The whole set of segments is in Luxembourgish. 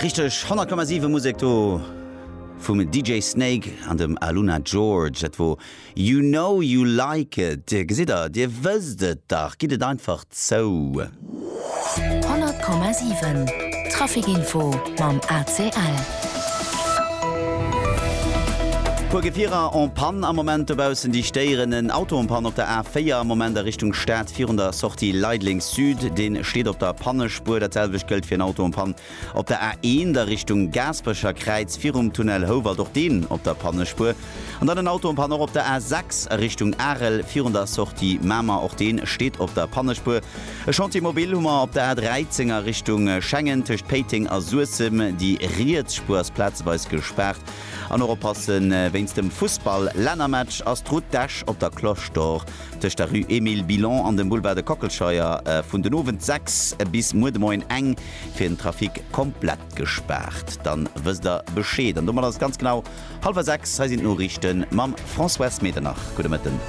Richteg 100,7 Musek do vum DJ Snake an dem Aluna George. Dat wor You Know You Like It. Dir gesitt der, dir wësst et dach, gitt et einfach zou. 100,7 Traficinfo mam ACL. Puer Gefierer en panne am Moment dobaussen, déi stéieren. En Auto en panne op der A4 am Moment a Richtung Stad virun der Sortie Leideleng. Sud, deen steet op der Pannespuer. Dat selwecht gëllt fir en Auto en panne op der A1 a Richtung Gaasperecher Kräiz virum Tunnel Houwald, och deen op der Pannespuer. An dann en Auto en panne och op der A6 a Richtung Arel virun der Sortie Mamer, och deen steet op der Pannespuer. E Chantier mobile hu mer op der A13 a Richtung Schengen tëscht Péiteng a Suessem. Déi riets Spuer ass plazeweis gespaart an och oppassen wéinst dem Fussball Lännermatch ass d'Route d'Esch op der Cloche d'Or Tëscht der Rue Emile Billon an dem Boulevard de Kockelscheuer vun den Owend 6 bis muer de Moien eng fir den Trafic komplett gespaart. Dann wësst der Bescheed an domat ass et ganz genau halwer 6. Hei sinn d'Noriichten mam Françoise Medernach. Gudde Mëtten.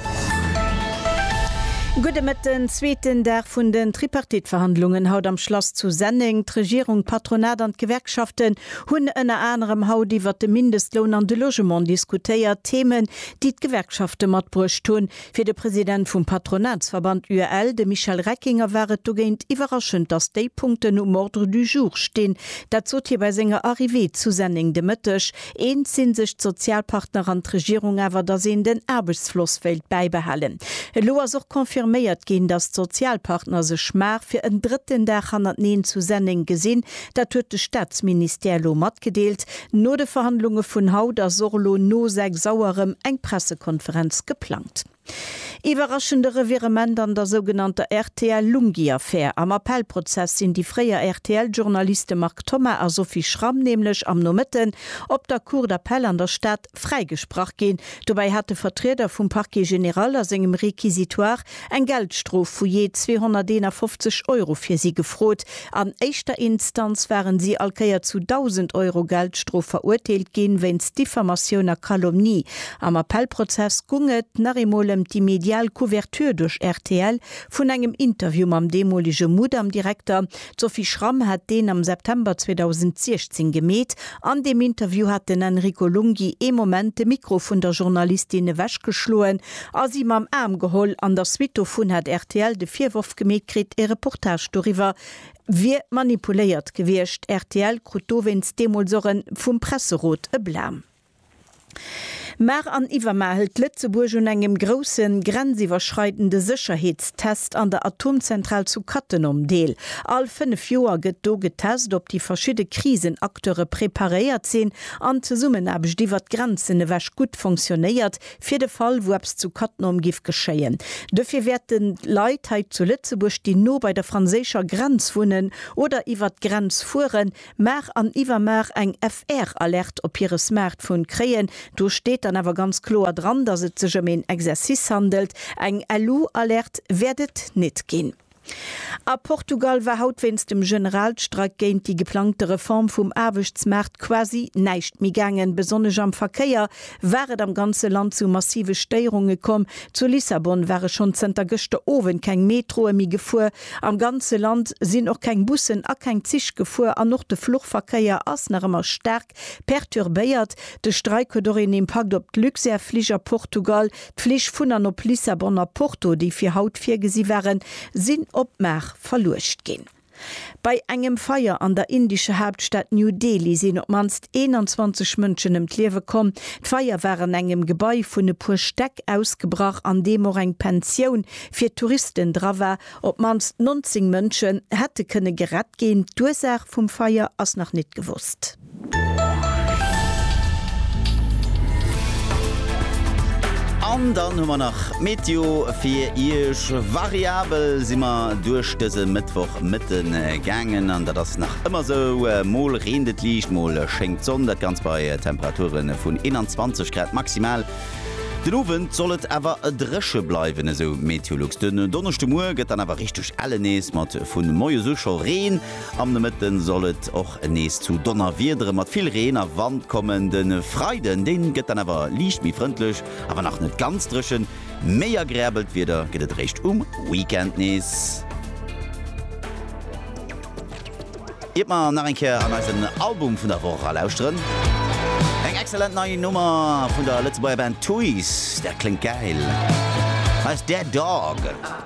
Gudde Mëtten. Zweeten Dag vun den Tripartite-Verhandlungen haut am Schlass zu Senneng. D'Regierung, d'Patronat an d'Gewerkschaften hunn ënner anerem haut iwwert de Mindestloun an de Logement diskutéiert. Themen, déi d'Gewerkschafte matbruecht hunn. Fir de President vum Patronatsverband UEL, de Michel Reckinger, war et dogéint iwwerraschend, datt déi Punkten um Ordre du jour stinn. Dat sot hie bei senger Arrivée zu Senneng de Mëtteg. Eens si sech d'Sozialpartner an d'Regierung awer, datt een den Aarbechtsfloss wéilt bäibehalen. Elo ass och confirméiert ginn, datt d'Sozialpartner sech mar fir en drëtten Dag hannerteneen zu Senneng gesinn, Dat huet de Staatsministère elo matgedeelt. No de Verhandlunge vun haut ass och elo no 6 Auer erëm eng Pressekonferenz geplangt. Iwwerraschende Revirement an der sougenannter RTL-Lunghi-Affär. Am Appellprozess sinn déi fréier RTL-Journaliste Marc Thoma a Sophie Schramm nämlech am Nomëtten op der Cour d'appel an der Stad, fräigesprach ginn. Dobäi hat de Vertrieder vum Parquet général a sengem Réquisitoire eng Geldstrof vu jee 251 Euro fir si gefrot. An éischter Instanz waren si all Kéier zu 1.000 Euro Geldstrof verurteelt ginn, wéinst Diffamatioun a Calomnie. Am Appellprozess gung et nach eemol ëm déi medial Couverture duerch rtl vun engem Interview mam deemolege Mudam-Direkter, D'Sophie Schramm hat deen am September 2016 gemeet. An deem Interview hat den Enrico Lunghi ee Moment de Mikro vun der Journalistin ewechgeschloen a si mam Aarm geholl. An der Suite dovun hat rtl de Virworf gemeet kritt, ee Reportage doriwwer wier manipuléiert gewiescht. Rtl krut dowéinst deemools och e vum Presserot e Blâme. Mar an iwwermar hëlt Lëtzebuerg un engem groussen, grenziwwerschreidende Sécherheetstest an der Atomzentral zu Cattenom deel. All fënnef Joer gëtt do getest, ob déi verschidde Krisenacteure preparéiert sinn an d'Zesummenaarbecht iwwer d'Grenzen ewech gutt fonctionnéiert, fir de Fall, wou eppes zu Cattenom giff geschéien. Dofir wäerten d'Leit hei zu Lëtzebuerg, déi no bei der franséischer Grenz wunnen oder iwwer d'Grenz fueren, Mar an iwwermar eng FR-Alerte op hire Smartphone kréien. Do steet dann awer ganz kloer dran, dass et sech ëm een Exercice handelt. Eng LU-Alerte wäert et nit ginn. A Portugal war haut wéinst dem Generalstreik géint déi geplangte Reform vum Aarbechtsmaart quasi näischt méi gaangen. Besonnesch am Verkéier war et am ganze Land zu massive Stéierunge komm. Zu Lissabon ware schonn zënter gëschter Owend keng Metroe méi gefuer. Am ganze Land sinn och keng Bussen a keng Zich gefuer an och de Fluchverkéier ass nach ëmmer staark perturbéiert. De Streik huet och een Impakt op d'Luxair Flich a Portugal. D'Flich vun an op Lissabon a Porto, déi fir haut virgesi waren, sinn op Mar verluecht ginn. Bei engem Feier an der indescher Haaptstad New Delhi sinn op d'mannst 21 Mënschen ëm d'Liewe komm. D'Feier war an engem Gebai vun e puer Stäck ausgebrach, an deem och eng Pensioun fir d'Touristen dra war. Op d'mannst 19 Mënsche hätte kënne gerett ginn. D'Ursaach vum Feier ass nach nit gewosst. An dann hu mer nach d'Meteo fir Iech. Variabel si mer duerch dëse Mëttwoch Mëtte gaangen an dat ass nach ëmmer esou. Mol reent et liicht, mol schéngt d'Sonn. Dat Ganzt bei Temperature vun 21 Grad maximal. Den Owend soll et awer dréche bleiwen, esou Meteolux. Den Donneschdemuer gëtt dann awer richteg elle nees, mat vu moies u scho Reen. Am Nomëtte soll et och nees zu Donnerwiedere mat vill Reen a Wand kommen. De Freiden, dee gëtt dann awer liicht méi frëndlech, awer nach net ganz dréchen. Méi agreabelt Wieder gëtt et eréischt um Weekend nees. Iert mer nach eng Kéier an eisen Album vun der Woch erlauschteren, eng excellent nei Nummer vun der Lëtzebuerger Band Tuys, dat kléngt gäil, hei ass Dead Dog.